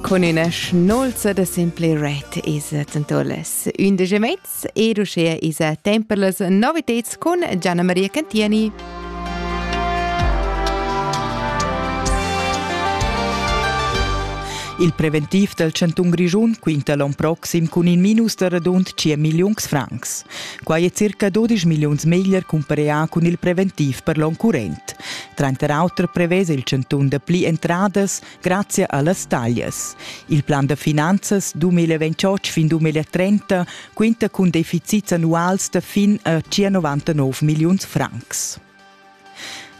Con üna schnolza da simple ret es tentolas ündesch e mez ed uschea esa temp per las noviteds cun Gianna Maria Cantieni. Il preventiv dal chantun Grischun quinta l'on proxim cun in minus da radund 10 milliuns francs. Quai è circa 12 milliuns meglier compareà cun il preventiv per l'on current. Tranter auter prevesa il chantun dapli entradas grazia a las taglias. Il plan da finanzas 2028 fin 2030 quinta cun deficits annuals da fin a circa 99 milliuns francs.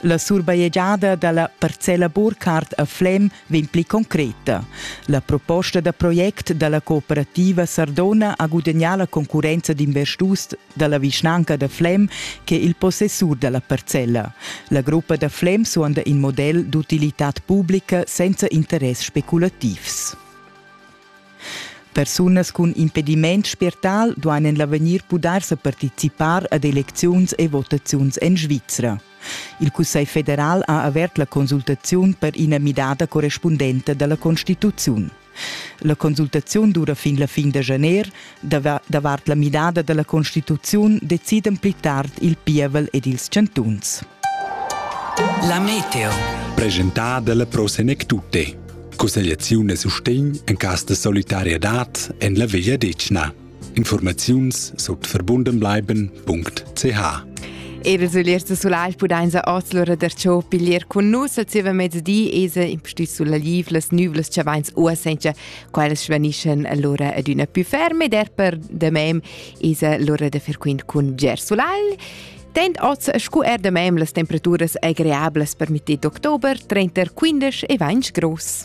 La surbajegiada da la parcella Burkhardt a Flem vegn pli concreta. La proposta da project dalla cooperativa Sardona ha gudagnà la concurrenza d'investurs dalla vischnanca da Flem che il possessur dalla parcella. La gruppa da Flem suonda in model d'utilitad publica senza interess speculativs. Persunas cun impediment spiertal duain en l'avegnir pudair sa participar ad elecziuns e votaziuns en Svizra. Il Cussegl federal ha avert la consultaziun per ina midada correspundenta dalla constituziun. La consultaziun dura fin la fin da janer. Davart la midada dalla constituziun decidan pli tard il pievel ed ils chantuns. La meteo. Presentada dalla Pro Senec Tutte. Cussegliaziun e sustegn en cas de solidarietad en la Veglia Decna. Informaziuns sut verbundenbleiben.ch Era sullers da sulai pudain sa oz lura der ciò piglier cun nus al zieva mezdi esa impustüt sulla liv las nüvlas cha vains ua senza quelles svanischen lura ad üna più ferme der per de mem esa lura da fer quint cun ger sulai Tend oz scu er de mem las temperaturas agreablas permittit d'october 30 15 e vains gross.